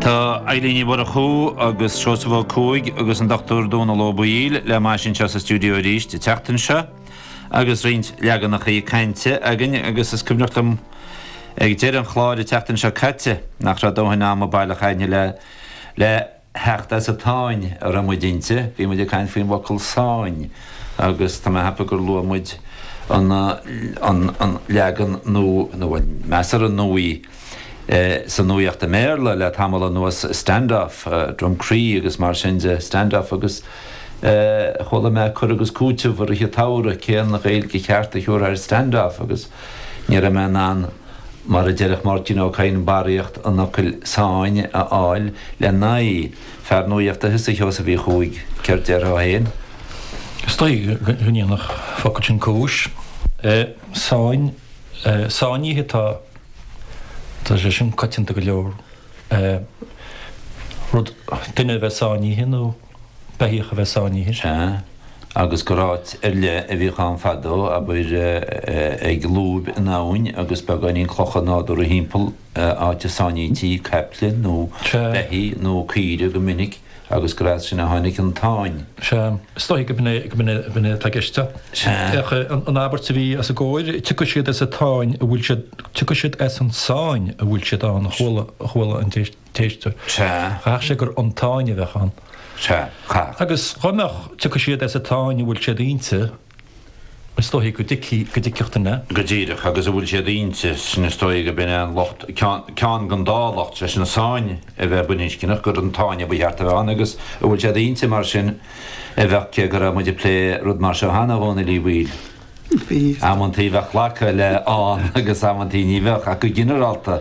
Tá Eibhlín Ní Mhurchú agus Seosamh Ó Cuaig agus an Dr Dónal Ó Baoill le m'ais anseo sa stiúideo arís an tseachtain seo agus roinnt leaganachaí cainte againn agus is cuimhneach liom ag deireadh an chláir an tseachtain seo caite nach raibh dóthain ama baileach againn le le theacht as an tsáinn a raibh muid inti. Bhí muid ag caint faoin bhfocal 'sáinn' agus tá mé ag ceapadh gur luaigh muid an leagan nua, nó bhuel, measartha nuaí, Sa nuacht i mBéarla le tamall anuas Standoff, Drumcree agus mar sin de, Standoff agus chuala mé cur agus cúiteamh i rith an tsamhraidh cén Ghaeilge cheart a thiúrfá ar standoff agus ní raibh mé in ann, mar a déarfadh Máirtín Ó Cadhain, barraíocht an fhocail sáinn a fháil lena aghaidh. Fear nuachta thusa, a Sheosaimh Uí Chuaig, céard déarfá féin? Is dóigh go ndéanfadh an focal sin cúis. Sáinn, sáinnithe atá. Tá sé sin coitianta go leor. Rud, duine a bheith sáinnithe nó beithíoch a bheith sáinnithe. Sea, agus gur áit ar leith a bhíodh ann fadó, abair, ag lúib in abhainn agus beagáinín clocha nádúrtha thimpeall, áit a sáinníti caiple nó beithígh nó caoire go minic. Agus gur as sin a tháinig an tsáinn. Sea, is dóigh go b'in é atá i gceist. Féach an abairt a bhí os ár gcomhair, Tiocfaidh siad as an tsáinn a bhfuil siad, tiocfaidh siad as an tsáinn a bhfuil siad ann, a chuala an t-éisteoir. Chaithfeadh sé gur an tsáinn a bheadh ann. Agus go mbeadh, tiocfaidh siad as an tsáinn a bhfuil siad inti. Is dóigh go dtuigfidh, go dtuigfeadh duine. Go díreach agus a bhfuil siad inti, sin is dóigh go b'in é an locht, ceann den dá locht, sé sin sáinn a bheith baininscneach, gur an tsáinn a ba cheart a bheith ann agus a bhfuil siad inti mar sin a bheadh cé go raibh muid ag plé rud mar seo cheana a Dhónail Uí Bhaoill. Bhí. Amanntaí bheadh glacadh le ann agus amanntaí ní bheadh ach go ginearálta,